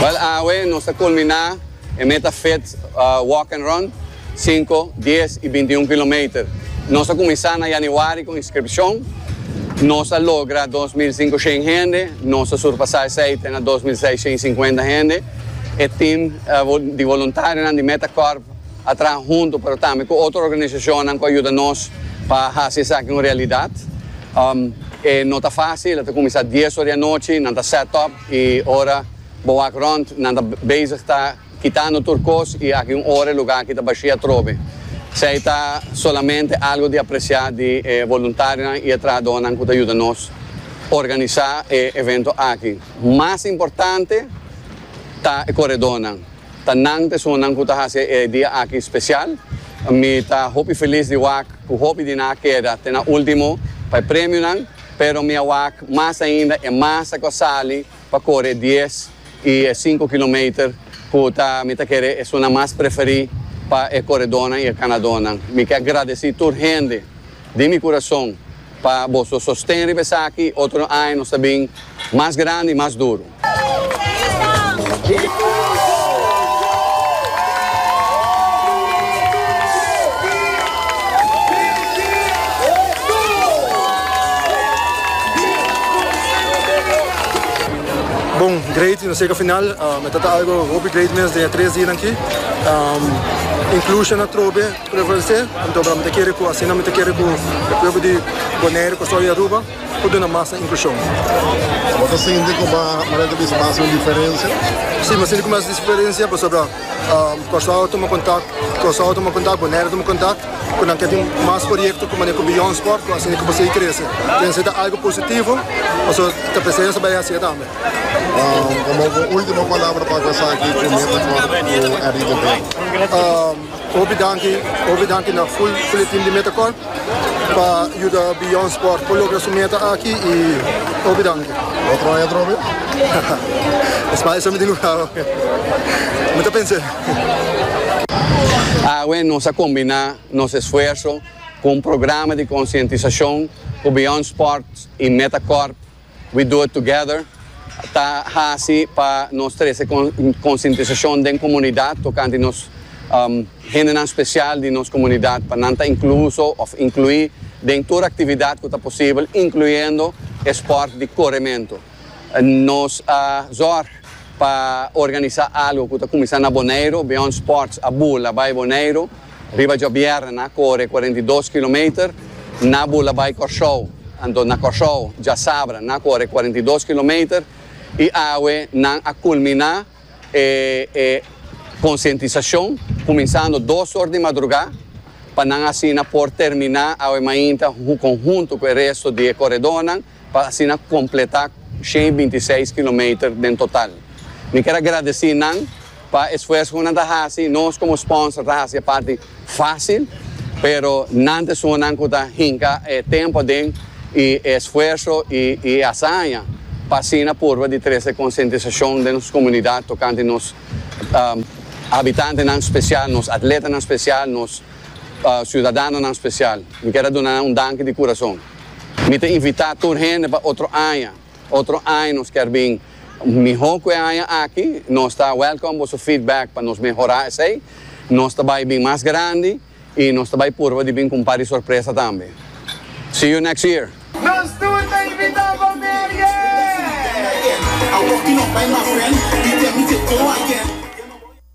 Bal awe nos ta kulminá e meta fit walk and run, sinku, dies i binti un kilometer. Nos a kuminsá na yanüari ku inskripshon. Nos a logra dos mil sinku shen hende. Nos a surpasá esei te na dos mil seis shen i sinkuenta hende. E tim di voluntarionan di Meta Corp. a traha huntu pero tambe ku otro organisacionnan ku a yuda nos pa haci esaki un realidad. E no ta facil, a ta cuminsa dies ora di anochi, nan ta set up y ora bo wak rond nan ta bezig ta kitando tur cos y aki un ora e lugar aki ta bashi atrobe. Esey ta solamente algo di aprecia di e voluntarionan y e trahadornan ku ta yuda nos organisa e evento aki. Mas importante ta e corredornan. Ta nan personanan cu ta haci e dia aki special. Mi ta hopi feliz di wak cu hopi di nan a keda te na ultimo pa e premionan, pero mi a wak mas ainda e masa cu a sali pa core e dies y e cinco kilometer cu ta mi ta kere esunnan mas preferi pa e coredornan y e ganadornan. Mi ke a gradeci tur hende. di mi kurason pa boso sosten riba esaki otro aña nos ta bin mas grandi i mas duru. Bon, great y nos yega final. Um, e ta ta algo hopi great mens den e tres dianan aki. Um, inclusion atrobe. Prevalece, anto bra mi ta kere cu asina mi ta kere cu e pueblo di Bonaire, Kustoi y Aruba por duna masa inclusion. Bo ta sinti cu bo manera ta bisa bo a haci un diferencia? Si, mi a sinti cu mi a haci diferencia pasobra Kustoi a tuma contact, Kustoi a tuma contact, Bonaire a tuma contact cu nan ke tin mas proyecto cu manera cu Beyond Sport cu asina cu bo sigui crece. Pensa ta algo positivo pasobra ta presensa bay hacia tambe. Como bo ultimo palabra pa cu esaki cu mi a ta for cu Enrique Bea? Hopi danki, hopi danki na full full team di Metacorp pa yuda Beyond Sport por logra su meta aki y hopi danki. Lo troya trobe? Espada sa mi tin luga ho. Mi ta pens'e. Awe nos a combiná nos esfuerso cu un programa di concientisacion cu Beyond Sport y Metacorp. We Do It Together ta hasi pa nos trese konsientisashon den komunidat tokante nos hendenan spesial di nos komunidat pa nan ta inkluso òf inkluí den tur aktividat ku ta posibel, inkluyendo e spòrt di korementu. Nos a zòrg pa organisá algu ku ta kuminsá na Boneiru, Beyond Sports a bula bai Boneiru. Riba djobièrnè nan a kore cuarenta i dos kilometer na bula bai Kòrsou. Anto na Kòrsou djasabra nan a kore cuarenta i dos kilometer i awe nan a kulminá e e konsientisashon kuminsando dos or di madrugá pa nan asina por terminá awe mainta kon huntu ku e resto di e koredónan. pa asina completá shen i binti seis kilometer den total. Mi ker a gradeci nan pa esfuerso cu nan ta haci, nos como sponsor ta haci e parti facil, pero nan ta esungunan cu ta hinca e tempo aden i e esfuerso i e hazaña pa asina purba di trece e concientisacion den nos comunidad tocante nos habitantenan special, nos atletanan special, nos ciudadanonan special. Mi ker a duna nan un danki di curason. Mi ta invitá tur hende pa otro aña. Otro aña nos kier bin mihó ku e aña aki. Nos ta wèlkòm boso feedback pa nos mehorá esei. Nos ta bai bin mas grandi i nos ta bai purba di bin ku un par di sorpresa tambe. See you next year! Nos tur ta invitá pa Merian!